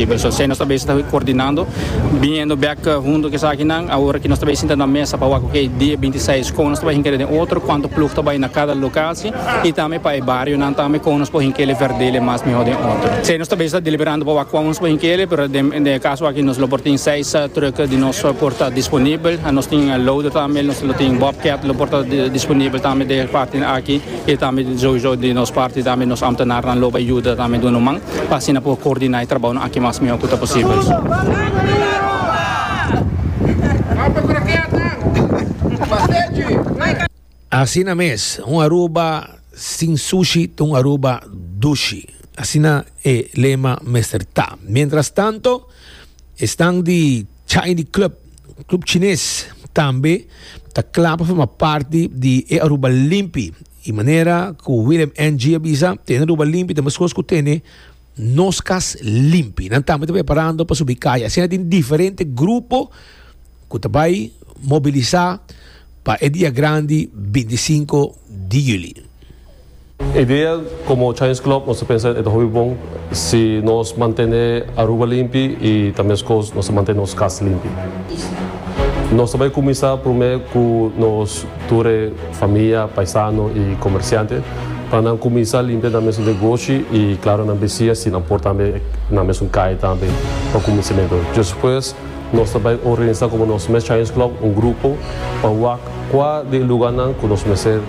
E Version C nos ta bay satahui coordinando, biniendo bek hundo cu esakinan. Awor aki nos ta bay sinta na mesa pa wak oke dia binti seis con nos ta bay hinkele den otro, cuanto ploeg ta bay na cada locatie y tambe pa e barionan tambe con nos por hinkele verdele mas miho den otro. Esey nos ta bay sa deliberando pa wak cuan nos por hinkele, pero den den e caso aki nos lo por tin seis truck di nos por ta disponibel. Nos tin loader tambe, nos lo tin bobcat lo por ta disponibel tambe den e partenan aki y tambe souzo den nos parte tambe nos ambtenarnan lo bay yuda tambe duna un man. pa asina por coordiná e trabaonan aki mas mihó cu ta posibel. Asina mes, un Aruba sin sushi ta un Aruba dushi. Asina e lema mester ta. Mientrastanto, e stan di chai di club, Club Chines, tambe ta cla pa forma parti di e Aruba limpi. E manera ku Willem NG a bisa, Tene ruba limpi ta meskos ku tene nos kas limpi. Nan tambe ta preparando pa subi kaya. Asina tin diferente grupo ku ta bai mobilisá pa e dia grandi 25 di yuli. E idea komo Chinese Club nos ta pensa e ta hopi bon si nos mantene Aruba limpi i ta meskos nos ta mantene nos kas limpi. Nos ta bai kuminsá promé ku nos. Tur e famia, paisano i komersiante pa nan kuminsá limpia nan mesun negoshi i klaro nan besiña si nan por tambe nan mesun kai tambe pa kuminsimentu. Djos pues nos ta bai organisá komo nos mes Challenge Club un grupo pa wak kua di e luganan ku nos mester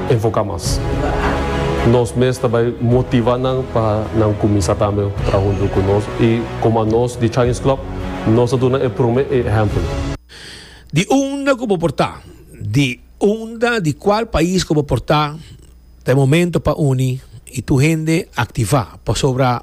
enfoká mas. Nos mes ta bai motivá nan pa nan kuminsá tambe traha huntu ku nos i komo anos di Challenge Club nos ta duna e promé e ehèmpel. Di unda ku bo por ta. Di unda, di kual pais ku bo por ta, ta e momento pa uni i tur hende aktivá, pasobra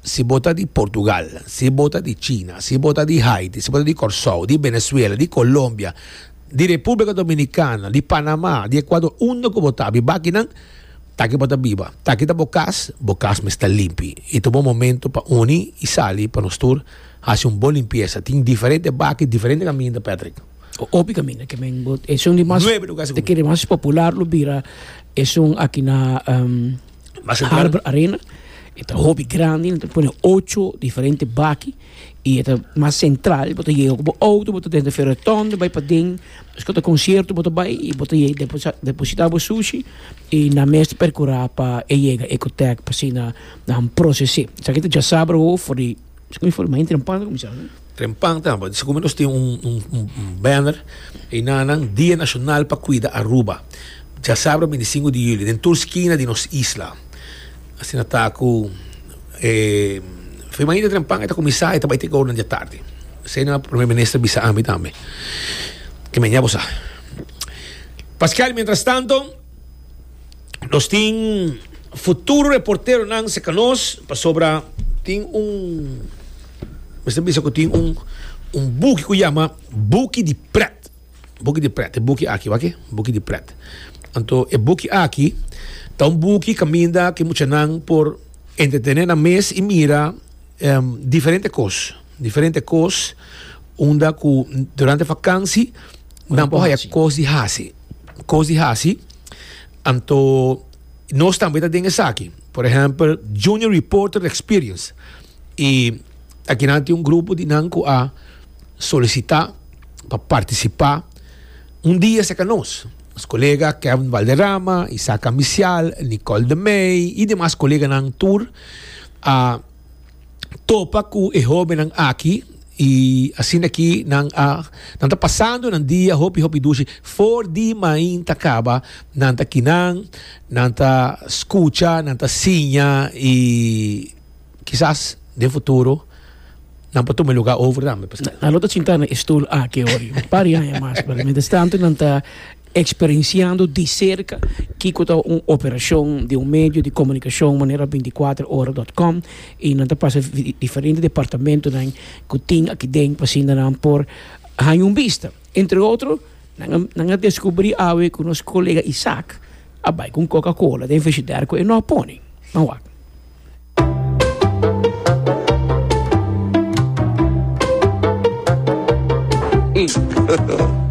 si bo ta di Portugal, si bo ta di China, si bo ta di Haiti, si bo ta di Kòrsou, di Benezuela, di Kolombia, di Repúblika Dominikana, di Panamá, di Ekuador, unda ku bo ta, biba aki nan, ta aki bo ta biba, ta aki ta bo kas, bo kas mester limpi i ta bo momento pa uni i sali pa nos tur Hasi un bon limpiesa. Tin diferente baki, diferente kaminda, Patrick. Hopi kaminda ke men bo. Esun di mas. Nuebe lugar segun mi. Di mas popular lo bira esun aki na Harbor Arena. E ta hopi grandi, nan ta pone ocho diferente baki i e ta mas sentral. Bo ta yega ku bo outo, bo ta den Fero Redondo, bai paden. Despues ku ta konsierto bo ta bai i bo ta yega deposita depositá bo sushi i nan mes ta perkurá pa e yega Ecotech pa asina nan proses'é. Esaki ta djazá broer for di. Trempan ta di segun mi nos tin un banner e nanan dia nashonal pa kuida Aruba diasabra binti sinku di julio den tur skina di nos isla asina ta ku e femein di Trempan e ta kuminsá e ta bai te ke ora di atardi esei nan Primer Minister a bisa ami tambe ke men ya bo sa paskial mientras tanto. Nos tin futuro reporteronan cerca nos pasobra tin un mester bisa cu tin un un buki cu yama Buki di Pret. Buki di Pret, e buki aki wak e, Buki di Pret. Anto e buki aki ta un buki caminda ki muchanan por entretene nan mes y mira em diferente cos. Diferente kos unda ku durante vakansi nan por haya kos di hasi. Kos di hasi. Anto nos tambe ta den esaki. Por ehempel, Junior Reporter Experience. I aki nan tin un grupo di nan ku a solisitá pa partisipá un dia serka nos. Nos kolega Kevin Valderrama, Isaac Ambicial, Nicole de Meij i demas koleganan tur a. topa cu e hobennan aki y asina ki nan a nan ta pasando nan dia hopi hopi dushi for di mainta caba nan ta kinan nan ta scucha nan ta siña y kisas den futuro nan por tuma e lugar over tambe. Nan lo ta sinta na e stoel aki hoy un par di aña mas pero mientras tanto nan ta. Experenciando di cerca kico ta un operacion di un medio di comunicacion manera binticuatroora dot com y nan ta pasa diferente departamentonan cu tin aki den pa asina nan por haña un bista. Entre otro nan a descubri awe cu nos colega Isaac a bay cu un coca cola den frigider cu e no a pone. Nan wak.